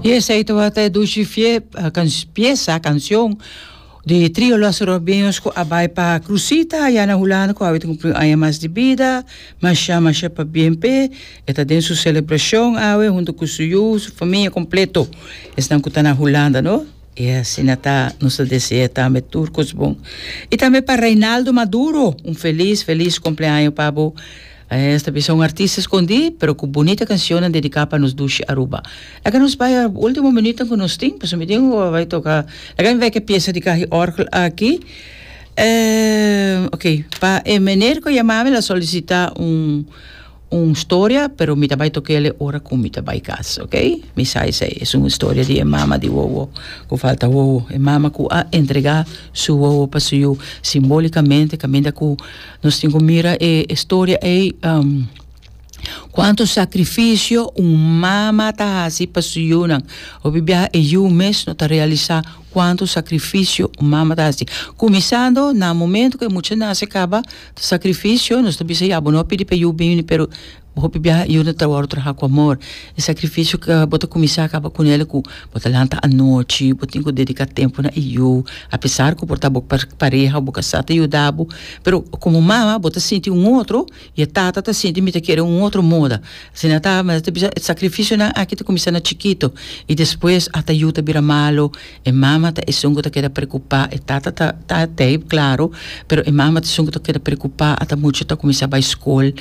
Y esey tabata e dushi fie, pieza, cancion, di trio Los Robiños cu a bay pa Cruzita aya na Hulanda cu awe ta cumpli un aña mas di bida. Masha, masha pa bien p'e. E ta den su celebracion awe hunto cu su yu, su famia completo. Esnan cu ta na Hulanda, no? Y asina ta, nos ta desea tambe tur cos bon. Y tambe pa Reinaldo Maduro, un feliz, feliz cumpleaño pa bo. Esta a bisa un artista escondi, pero cu bunita cancionnan dedica pa nos dushi Aruba. Laga nos bay a ultimo minutonan cu nos tin, pasobra mi tin cu a bay toca. Laga mi bay cu e pieza di cahy orgel aki. Ok, pa e meneer cu yama mi el a solicita un storia, pero mi ta bay toquele ora cu mi ta bay cas, ok. Mi sa esey, es un storia di e mama di wowo cu falta wowo. E mama cu a entrega su wowo pa su yu simbolicamente caminda cu. Nos tin cu mira e storia ey, cuanto sacrificio un mama ta haci pa su yiunan, hopi biaha e yiu mes no ta realisa cuanto sacrificio un mama ta haci, cuminsando na momento cu e mucha naci caba, ta sacrificio, nos ta bisa ya bo no a pidi pa e yiu bini pero Bo hopi biaha i unda trabao traha ku amor. E sakrifisio ku bo ta kuminsá kaba ku nel ku bo ta lanta anochi, bo tin ku dediká tempu na e yu. Apesar ku por ta bo pareha, bo kasá ta yuda bo, pero komo mama bo ta sinti un otro i e tata ta sinti mi ta kere un otro moda. Asina ta, mester ta bisa e sakrifisionan aki ta kuminsá na chikito i despues ata yu ta bira malu. E mama ta esun ku ta keda preokupá, e tata ta ta tei klaru, pero e mama ta esun ku ta keda preokupá, ata mucha ta kuminsá bai skol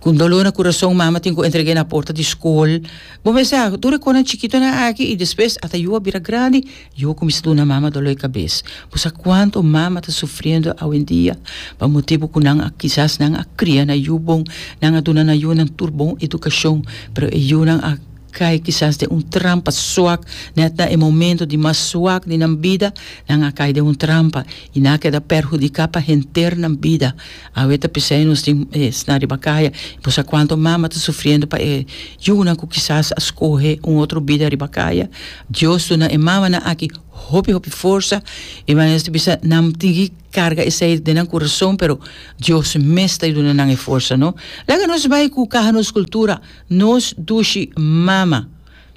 ku doló na kurason, mama tin ku entreg'é na porta di skol. Bo mes sa, tur e konan chikitonan aki i despues ata yu a bira grandi, yu a kuminsá duna mama doló di kabes. Bo sa kuantu mama ta sufriendo awendia pa motibu ku nan a kisas nan a kria na yu bon, nan a duna nan yunan tur bon edukashon, pero e yunan a Kai kisas den un trampa suak, nèt na e momento di mas suak di nan bida, nan a kai den un trampa i nan a keda perhudiká pa henter nan bida. Awe ta p'esei nos tin sna riba kaya i por sa kuantu mama ta sufriendo pa e yunan ku kisas a skohe un otro bida riba kaya. Dios duna e mamanan aki hopi hopi forsa i mane nos ta bisa nan tin ki karga esei den nan kurason, pero Dios mes ta duna nan e forsa. No laga nos bai ku kaha nos kultura Nos dushi mama.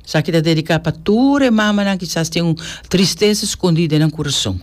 Esaki ta dediká pa tur e mamanan kisas tin un tristesa skondí den nan kurason.